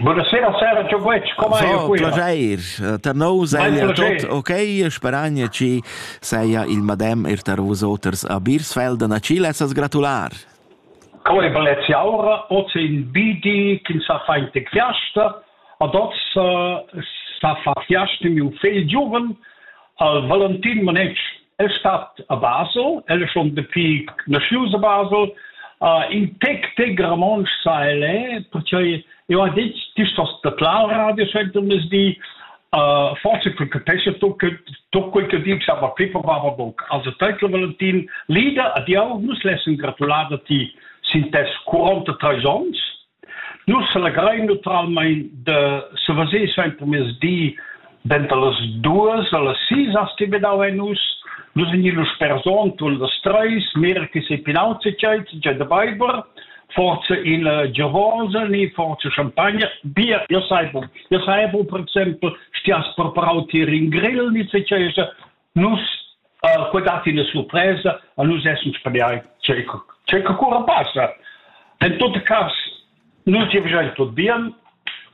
Buonasera Sara, ciao Guec, come hai so, Piaceir, tar nous seia tot ok, speragna ci seia il madem er tar vus oters a Birsfelden a ci lessas gratular. Come bellezia aura, oz è il bidi che sa fa inte fiasta, ad oz sa fa fiasta mio figl giuven al Valentin Manec El stat a Basel, el è schon dapi naschius a Basel. Uh, in tec, tec romontsch sa el è, perché eu ha detto, ti stos da tlau radio scent um das di, uh, forse che capesce tu che tu quel che dici aber Pippa Baba Bock. Also Teutl Valentin, Lieder, adieu, nus lessen gratulada ti sin tes 43 ons Nus selegrein naturalmein da savasir suentermiezdi denter las duas allas sis has ti midau ein nus. Nus vegnin lu sper Sontun las treis, mira che sei pinau tscheit, già da Beiber, forse in uh, Gewörse, ni forse Champagner, Bier, io sai bu, io sai bu, per exempel, stias preparau ti Ringrill, ni se c'è Nus uh, que dat ina surpresa a nus essens paliai ce ce que cura passa. En tot cas nus ti vegian tot bien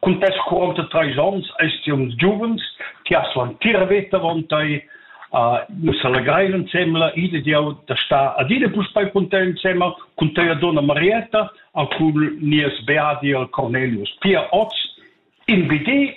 cun tes 43 ans est uns giuvens che ha svan tira veta vontai uh, nus allegrein insieme ide di da sta adine puspai content insieme con te donna Marietta a con nies beadi al Cornelius Pia Oz in BD